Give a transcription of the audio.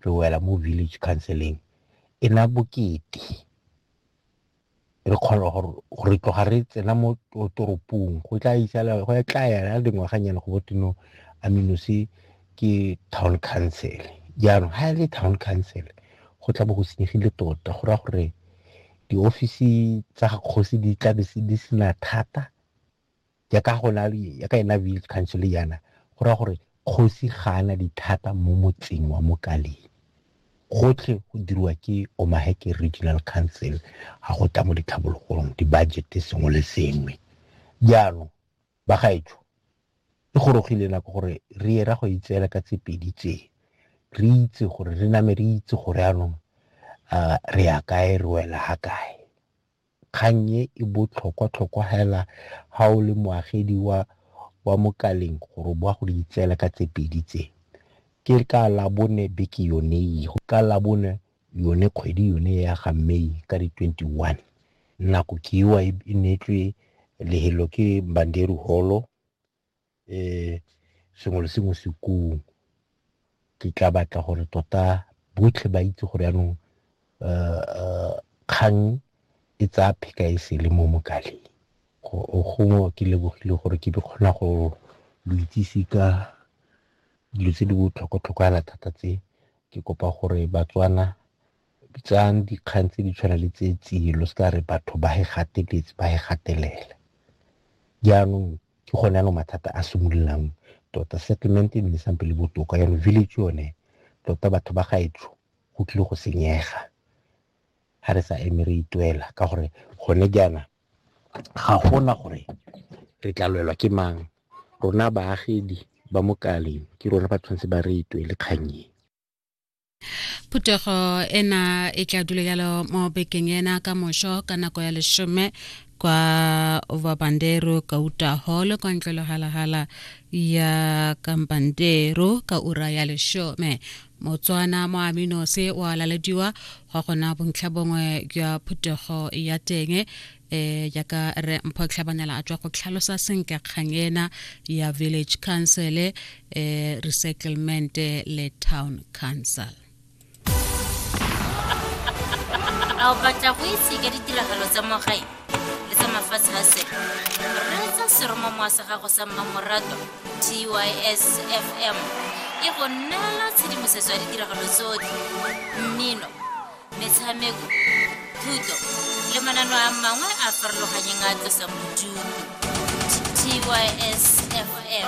re wela mo village counseling e na bokete re kgona gore re tloga re tsena mo toropong go tla isala go ya tla yana dingwaganyana go botino aminose ke town council jaanong ga e le town council go tla bo go senyegile tota go raya gore diofisi tsa kgosi di tla di sena thata ya ka go na ya ka ena village council yana go ra gore kgosi ga ana dithata mo motseng wa mokaleng gotlhe go dirwa ke omaheke regional council ga go tla mo ditlhabologong di-budget sengwe le sengwe jaanong ba gaetsho e gorogile nako gore re ye ra go itseela ka tse pedi tse re itse gore re name re itse gore anong re ya kae re wela ga kae Kgang e e botlhokwatlhokwa hela ha o le moagedi wa wa mo Kaleng gore o bo wa go di itseela ka tse pedi tse. Ke ka Labone beke yone e, ka Labone yone kgwedi yone ya ga May ka di 21. Nako ke ewa e neetswe lehelo ke Mbanderi Holo. um sengwe le sengwe se kong ke tla batla gore tota botlhe ba itse gore yaanong um kgang e tsaya pheka e sele mo mokaleng gongwe ke lebogile gore ke be kgona go lo itsise ka dilo tse di botlhokwa-tlhokwana thata tse ke kopa gore batswana Bitsang dikgang tse di tshwana le tse tsiye lo seka re batho ba he gateletse ba he gatelela jaanong ke gone ano mathata a simololang tota settlement e nne sampe le botoka jaanong village yone tota batho ba gaetsho go tlile go senyega ga re sa eme re itwela ka gore gone jaana ga gona gore re tla lwelwa ke mang rona baagedi ba mokaleng ke rona ba tshwanetse ba re itwele kganyeng phuthego ena e tla dula yalo mo bekeng ena ka mošo ka nako ya leshome kwa vabandero kauta hall kwa ntlwelo halahala ya kambandero ka ura ya leshome motswana mo aminose o alalediwa gwa gona bontlha bongwe jwa phuthego ya teng eh jaaka re mpho tlhabanela a tswa go tlhalosa senka kgang ena ya village council eh resettlement le town council a o batla go itse ka ditiragalo tsa mo gae le tsa mafatshe a sele reetsa seromamowa sa gago sa mmamorato tys fm e go neela tshedimosetso ya ditiragalo tsotlhe mmino metshameko thuto le manano a mangwe a farologanyeng a tlosang bodutu tysfm